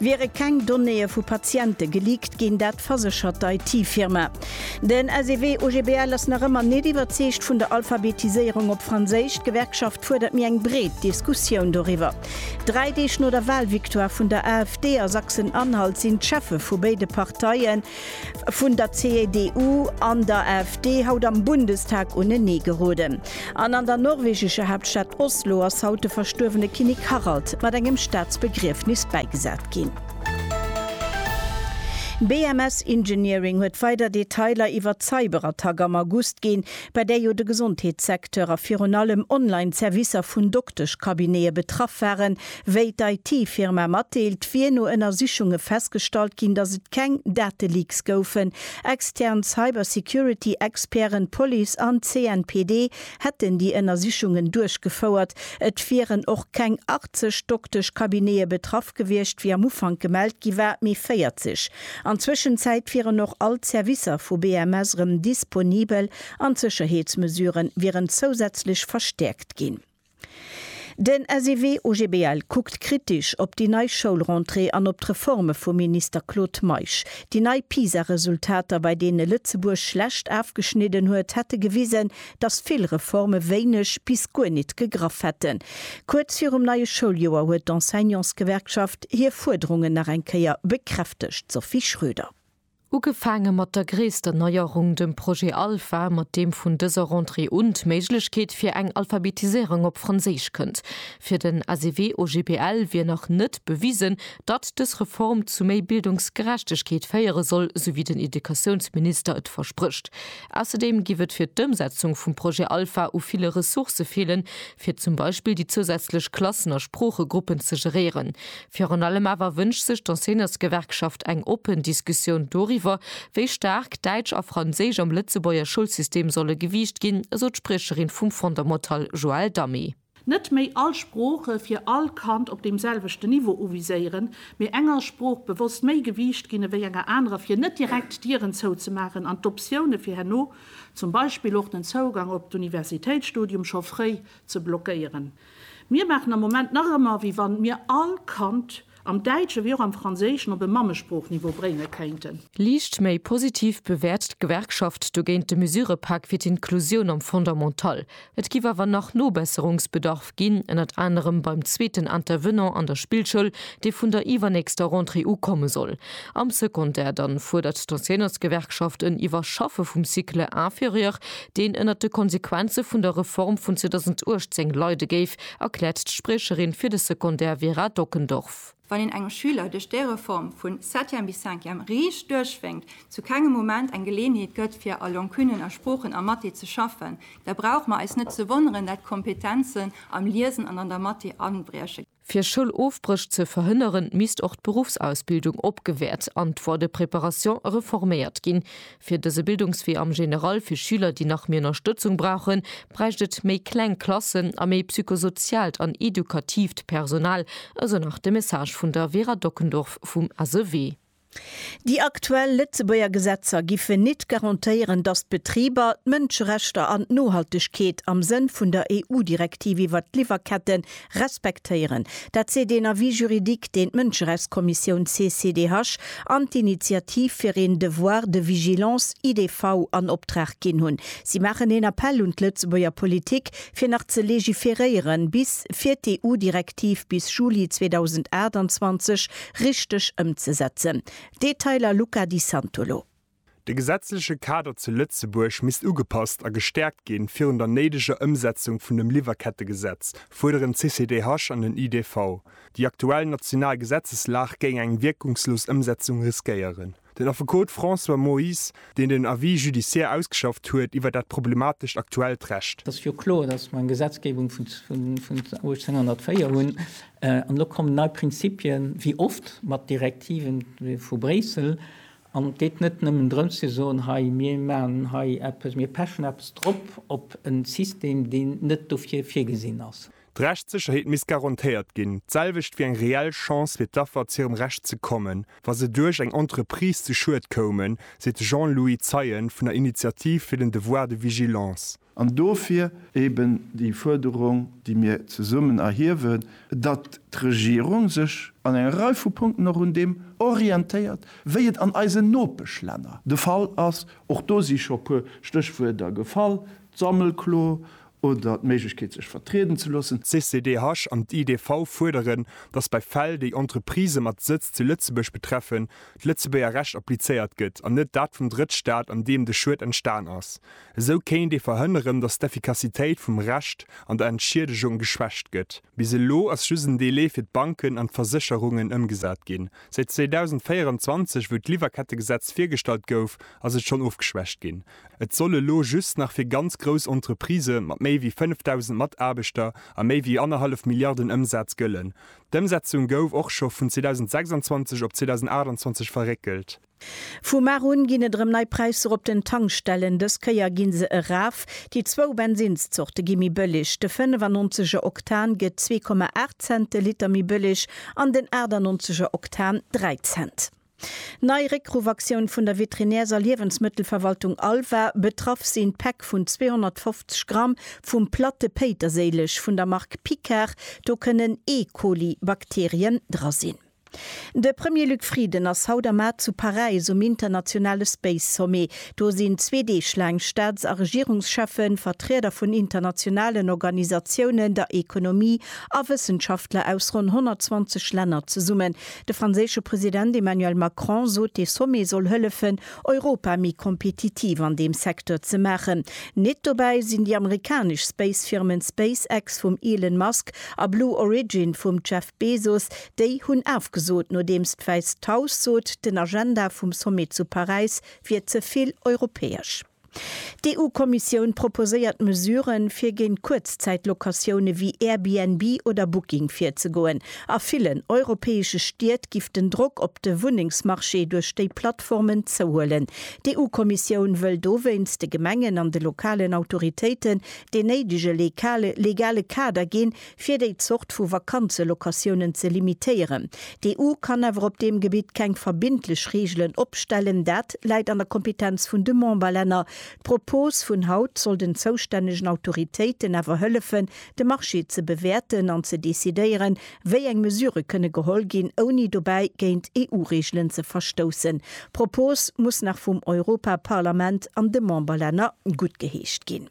Wiere keng Donnéeë vu Patiente geleakt ginn, dat verséchert d'IT-Firma. Den SEW-OGBL ass nach ëmmer net iwwerzeegt vun der Alphabetiséierung op Franséisch. D'Gewerkschaft fuerdert méi eng breet Diskussioun doriwwer. Dräi Deeg no der Walvictoire vun der AfD a Sachsen-Anhalt sinn d'Cheffe vu béide Parteien, vun der CDU an der AfD haut am Bundestag unenee geroden an an der norwegescher Haaptstad Oslo ass haut de verstuerwene Kinnek Harald mat engem Staatsbegriefnis bäigesat ginn. BMS Engineering huet weider Detailer iwwert d'Cyberattack am August ginn, bei där jo de Gesondheetssecteur a virun allem Online-Servicer vun Dokteschcabinete betraff waren, Wéi d'IT-Firma matdeelt, wier no Ënnersichunge festgestallt ginn, datt et keng Dateleaks goufen. Extern Cybersecurity-Experten, Police an CNPD hätten déi Ënnersichungen duerchgefouert. Et wieren och keng 80 Dokteschcabinete betraff gewiescht, wéi am Ufank gemellt gi war, mee 40. An Zwëschenzäit wieren och all d'Servicer vu BMS erëm disponibel an d'Sécherheetsmesuren wieren zousätzlech verstäerkt ginn. Den SEW OGBL kuckt kritisch op déi nei Schoulrentrée an op d'Reforme vum Minister Claude Meisch. Déi nei PISA-Resultater, bei deene Lëtzebuerg schlecht afgeschnidden huet, hätte gewisen, datt vill Reforme wéineg bis guer nit gegraff hätten. Kuerz virum neie Schouljoer huet d'Enseignantsgewerkschaft hir Fuerderungen nach eng Kéier bekräftegt, Sophie Schröder. Ugefaange mat der gréisster Neierung, dem Projet Alpha, mat deem vun dëser Rentrée un d'Méiglechkeet fir eng Alphabetiséierung op Franséisch kënnt. Fir den ACV-OGBL wier nach net bewisen, datt dës Reform zu méi Bildungsgerechtegkeet féiere soll, sou wéi den Educatiounsminister et versprécht. Ausserdeem giff et fir d'Ëmsetzung vum Projet Alpha u ville Ressourcë feelen, fir zum Beispill déi zousätzlech Klassen a Sproochegruppen ze geréieren. Virun allem awer wënscht sech d'Enseignantsgewerkschaft eng oppen Diskussioun doriwwer, wéi staark Däitsch a Franséisch am Lëtzebuerger Schoulsystem solle gewiicht ginn, esou d'Spriecherin vum Fondamental Joëlle Damé. Net méi all Sprooche fir all Kand op deem selwechten Niveau uviséieren, mee enger Sprooch bewosst méi Gewiicht ginn ewéi enger anerer, fir net direkt Dieren zouzemaachen an d'Optioune fir herno, zum Beispill och den Zougang op d'Universitéitsstudium, scho fréi ze blockéieren. Mir maachen am Moment nach ëmmer, wéi wann mir all Kand am Däitschen wéi och am Franséischen op e Mammesproochniveau brénge kéinten. Liicht méi positiv bewäert d'Gewerkschaft dogéint de Mesurëpak fir d'Inklusioun am Fondamental. Et géif awer nach Nobesserungsbedarf ginn, ënnert anerem beim zweeten Intervenant an der Spillschoul, dee vun der iwwernächster Rentrée u komme soll. Am Secondaire dann fuerdert d'Enseignantsgewerkschaft en Iwwerschaffe vum Cycle inférieur, deen ënnert de Konsequenze vun der Reform vun 2018 leide géif, erkläert d'Spriecherin fir de Secondaire Vera Dockendorf. Wann een engem Schüler duerch déi Reform vu Septième bis Cinquième riicht duerchwénkt, zu kengem Moment eng Geleeënheet gëtt fir a Long Kunnen, a Sproochen, a Mathé ze schaffen, da brauche mer eis net ze wonneren, dat d'Kompetenzen am Liesen an an der Mathé abrieche. Fir Schoulofbréch ze verhënneren, misst och d'Beruffsausbildung opgewäert an d'Voie de préparation reforméiert ginn. Fir dëse Bildungswee am General fir Schüler, déi nach méi Ënnerstëtzung brauchen, bräicht et méi kleng Klassen a méi psychosoziaalt an edukatiivt Personal, esou nach de Message vun der Vera Dockendorf vum SEW. Déi aktuell Lëtzebuerger Gesetzer giffen nit garantéieren, datt d'Betriber d'Mënscherechter an d'Nohaltegkeet am Sënn vun der EU-Direktiv iwwert d'Liwwerkette respektéieren. Dat seet een Avis juridique, deen d'Mënscherechtskommissioun CCDH an d'Initiativ fir een Devoir de vigilance, IDV, an Optrag ginn hunn. Si maachen een Appell un d'Lëtzebuerger Politik, fir nach ze legiferéieren, bis fir d'EU-Direktiv bis Juli 2028 richteg ëmzesetzen. Detailer Luca Di Santolo. De gesetzleche Kader zu Lëtzebuerg misst ugepasst a gestäerkt ginn. Virun der néideger Ëmsetzung vun dem Liwwerkettegesetz fuerderen d'CCDH an den IDV. Déi aktuell national Gesetzeslag géing eng wierkungslos Ëmsetzung riskéieren. Den Affekot François Moyse, deen den Avis judiciaire ausgeschafft huet iwwer dat problematescht aktuellt Recht. Ass jo kloer, datt mer eng Gesetzgebung vun 1804 hunn an elo kommen nei Prinzipien, wéi oft, mat Direktiven vu Bréissel. An et geet net nëmmen drëms ze soen, hei mir maachen hei eppes, mir pechen eppes drop op e System, deen net dofir virgesinn ass. D'Rechtssécherheet misst garantéiert ginn, d'selwecht wéi eng reell Chance fir d'Affer zu hirem Recht ze kommen, wa se duerch eng Entreprise zu Schued koumen, seet de Jean-Louis Zeien vun der Initiativ fir den Devoir de vigilance. An dofir eben déi Fuerderung, déi mir zesummen erhiewen, datt d'Regierung sech an enger Rei vu Punkten och un deem orientéiert, wéi et an eisen Nopeschlänner de Fall ass. Och do si scho e puer Stéchwuerter gefall, d'Sammelklo oder d'Méiglechkeet sech vertrieden ze loossen. D'CCDH an d'IDV fuerderen, datt bei Fäll, déi Entreprisë mat Sëtz zu Lëtzebuerg betreffen, d'Lëtzebuerger Recht applizéiert gëtt an net dat vum Drëttstaat, an deem de Schued entstan ass. Esou kéint ee verhënneren, datt d'Effikassitéit vum Recht an der Entschiedegung geschwächt gëtt. Bis elo ass just en Delai fir d'Banken an d'Versécherungen ëmgesat ginn. Säit 2024, wou d'Liwwerkettegesetz virgestallt gouf, ass et schonn ofgeschwächt ginn. Et soll elo just nach fir ganz grouss Entreprisë mat méi wéi 5.000 Mataarbechter a méi wéi annerhallef Milliarden Ëmsaz gëllen. D'Ëmsetzung gouf och scho vun 2026 op 2028 verréckelt. Vu mar un ginn et erëm nei Präisser op den Tankstellen. Dës Kéier gi se eraf. Déi zwou Bensinnszorte gi méi bëlleg. De 95 er Oktan gëtt zwee Komma aacht Cent de Liter méi bëlleg an den 98 er Oktan dräi Cent. Nei Réckruffaktion vun der Veterinärs a Liewensmëttelverwaltung Alva, betraff sinn d'Päck vun 250 Gramm vum platte Péiterséileg vun der Mark Picard, do kënnen E. Coli Bakterien dra sinn. De Premier Luc Frieden ass haut am Maart zu Paräis um internationale Space Sommet. Do sinn zwee Deeg laang Staats a Regierungscheffen, Vertrieder vun internationalen Organisatiounen, der Ekonomie a Wëssenschaftler aus ronn 120 Länner zesummen. De franséische President Emmanuel Macron sot, dee Sommet soll hëllefen, Europa méi kompetitiv an deem Secteur ze maachen. Nit dobäi sinn déi amerikanesch Space-Firmen SpaceX vum Elon Musk a Blue Origin vum Jeff Bezos. Déi hunn afgesot, nodeems d'Wäisst Haus sot, den Agenda vum Sommet zu Paräis wier ze vill europäesch. D'EU-Kommissioun proposéiert Mesuren, fir géint Kuerzzäit-Locatioune wéi Airbnb oder Booking virzegoen. A villen europäesche Stied giff den Drock op de Wunnengsmarché duerch déi Plattformen zouhuelen. D'EU-Kommissioun wëll dowéinst de Gemengen an de lokalen Autoritéiten deen néidege legale Kader ginn, fir déi Zort vu Vakanzelocatiounen ze limitéieren. D'EU kann awer op deem Gebitt keng verbindlech Reegelen opstellen, dat läit an der Kompetenz vun de Memberlänner. D'Propos vun haut soll den zoustännegen Autoritéiten awer hëllefen, de Marché ze bewäerten an ze decidéieren, wéi eng Mesurë kënne geholl ginn, ouni dobäi géint EU-Reegelen ze verstoussen. D'Propos muss nach vum Europaparlament an de Memberlänner guttgeheescht ginn.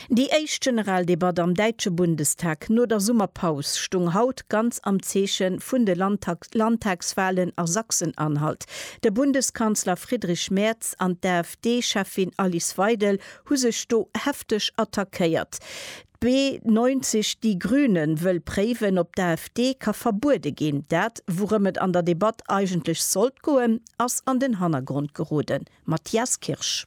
Déi éischt Generaldebatt am däitsche Bundestag no der Summerpaus stung haut ganz am Zeeche vun de Landtagswalen a Sachsen-Anhalt. De Bundeskanzler Friedrich Merz an d'AfD-Cheffin Alice Weidel hu sech do hefteg attackéiert. B90 Die Grüne wëll préiwen, ob d'AfD ka verbuede ginn. Dat, wourëm et an der Debatt eigentlech sollt goen, ass an den Hannergrond geroden. Matthias Kirsch.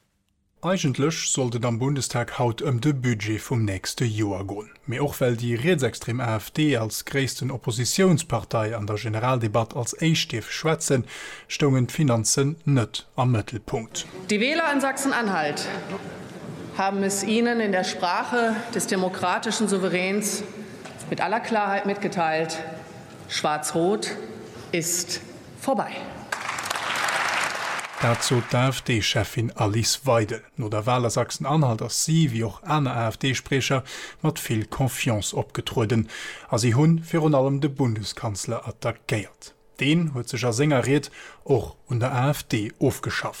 Eigentlech sollt et am Bundestag haut ëm de Budget vum nächste Joer goen, mee och well déi rietsextrem AfD als gréissten Oppositiounspartei an der Generaldebatt als éischt dierf schwätzen, stoungen d'Finanzen net am Mëttelpunkt. Die Wähler in Sachsen-Anhalt haben es Ihnen in der Sprache des demokratischen Souveräns mit aller Klarheit mitgeteilt, Schwarz-Rot ist. Vorbei. Dat sot d'AfD-Cheffin Alice Weidel. No der Wal a Sachsen-Anhalt ass si, wéi och aner AfD-Spriecher, mat vill Confiance opgetrueden a si hunn virun allem de Bundeskanzler attackéiert. Deen huet sech a senger Ried och un der AfD ofgeschafft.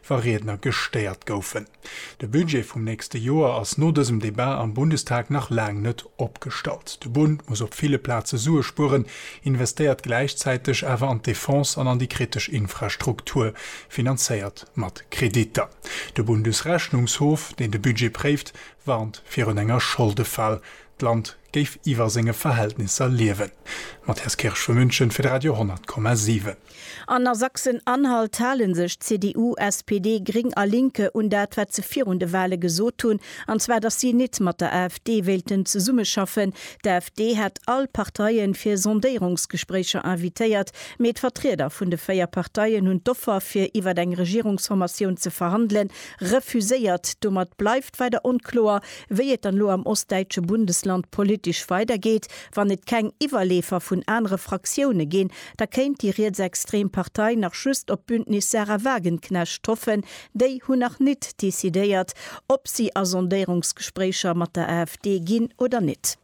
wa Riedner gestéiert goufen. De Budget vum nächste Joer ass no dësem Debat am Bundestag nach laang net opgestallt. De Bund muss op ville Plaze Sue spueren, investéiert gläichzäiteg awer an d'Defense an an déi kritesch Infrastruktur, finanzéiert mat Kreditter. De Bundesrechnungshof, deen de Budget préift, warnt virun enger Scholdefal, d'Land géif iwwer senge Verhältnisser liewen. Matthias Kirsch vu München fir de Radio 10,7. An a Sachsen-Anhalt hale sech CDU, SPD, Gring a Linke un dat, wat se virun de Wale gesot hunn, an zwar datt si nit mat der AfD wéilten zesummeschaffen. D'AfD hat all Parteie fir Sondéierungsgespréicher invitéiert, mee d'Vertrieder vun de véier Parteien hunn d'Offer fir iwwer eng Regierungsformatioun ze verhandelen, refuséiert. Domat bleift weider onkloer, wéi et dann elo am ostdäitsche Bundesland politesch weidergeet, wann et keng Iwwerleefer vun anere Fraktioune ginn, Da kéint déi rietsextrem Partei nach just op d'Bündnis Sahra Wagenknecht hoffen. Déi hunn nach nit decidéiert, ob si a Sondéierungsgespréicher mat der AfD ginn oder nit.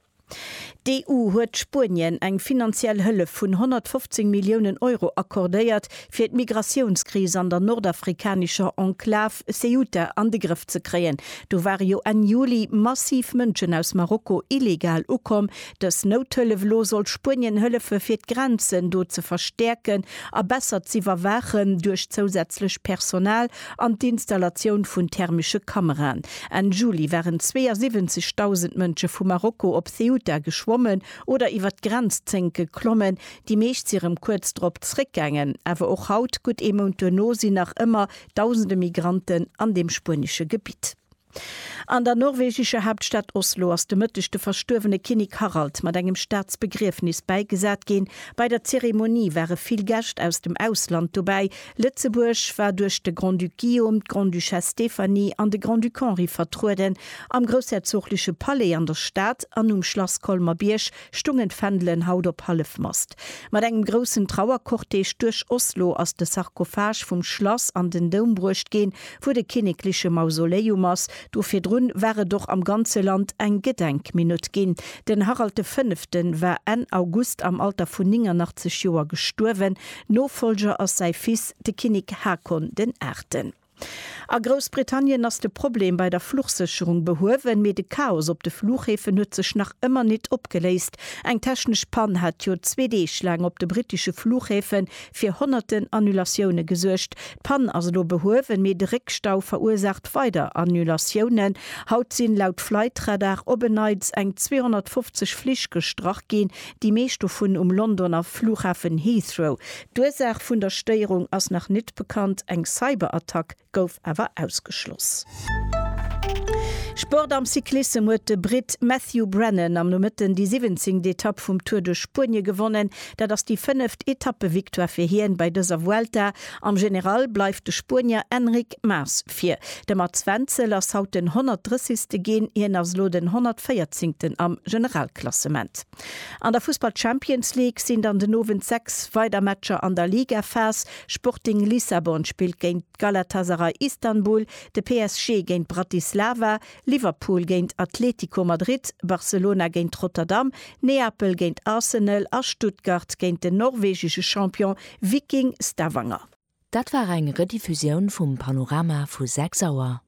D'EU huet Spuenien eng finanziell Hëllef vun 115 Milliounen Euro accordéiert, fir d'Migratiounskris an der nordafrikanescher Enklav Ceuta an de Grëff ze kréien. Do ware jo Enn Juli massiv Mënschen aus Marokko illegal ukomm, Dës Nouthëllef elo soll Spuenien hëllefe fir d'Grenzen do ze verstäerken a besser z'iwwerwaachen duerch zousätzlech Personal an d'Installatioun vun thermesche Kameraen. Enn Juli waren 72.000 Mënsche vu Marokko op Ceuta geschwommen oder iwwer d'Grenz Zénk geklommen. Déi meescht si rëm kuerz drop zeréckgaangen. Awer och haut, gutt ee Mount duerno, sinn nach ëmmer Dausende Migranten an deem spuenesche Gebitt. An der norwegescher Haaptstad Oslo ass de Mëtteg de verstuerwene Kinnek Harald mat engem Staatsbegriefnis bäigesat ginn. Bei der Zeremonie ware vill Gäscht aus dem Ausland dobäi. Lëtzebuerg war duerch de Grand-Duc Guillaume, d'Grande-Duchesse Stéphanie an de Grand-Duc Henri vertrueden. Am groussherzogleche Palais an der Stad an um Schlass Colmer-Bierg stungen d'Fändelen haut op Hallefmast. Mat engem groussen Trauercortège duerch Oslo ass de Sarkophage vum Schlass an den Doum bruecht ginn, wou de kinnekleche Mausoleum ass. Do virdrun war et och am ganze Land eng Gedenkminutt ginn. Den Harald de Fënneften war Enn August am Alter vun 89 Joer gestuerwen. Nofollger ass säi Fils, de Kinnek Haakon den Aachten. A Groussbritannien ass de Problem bei der Fluchsécherung behuewen, mee de Chaos op de Flughäfen huet sech nach ëmmer nit opgeléist. Eng technesch Pann hat jo zwee Deeg laang op de brittesche Flughäfe fir honnerten Annulatioune gesuergt. D'Pann ass elo behuewen, mee de Réckstau verursaacht weider Annulatiounen. Haut sinn, laut Flightradar, op en Neits eng 250 Flich gestrach ginn, déi meescht dovun um Londoner Flughafen Heathrow. D'Ursaach vun der Stéierung ass nach nit bekannt, eng Cyberattack gouf awer ausgeschloss. Sport Am Cyclissem huet de Britt Matthew Brennan am Nomëtten déi siwwenzéngt Etapp vum Tour de Spuenie gewonnen. Dat ass déi fënneft Etappevictoire fir hien bei dëser Vuelta. Am General bleift de Spuenier Enric Mas vir. De Mats Wenzel ass haut den 130. ginn, hien ass elo den 114. am Generalklassement. An der Fussball Champions League sinn dann den Owend 6 weider Matcher an der Ligaphas, Sporting Lissabon spillt géint Galatasaray Istanbul, de PSG géint Bratislava, Liverpool géint Atletico Madrid, Barcelona géint Rotterdam, Neapel géint Arsenal a Stuttgart géint den norwegesche Champion Viking Stavanger. Dat war eng Rediffusioun vum Panorama vu 6 Auer.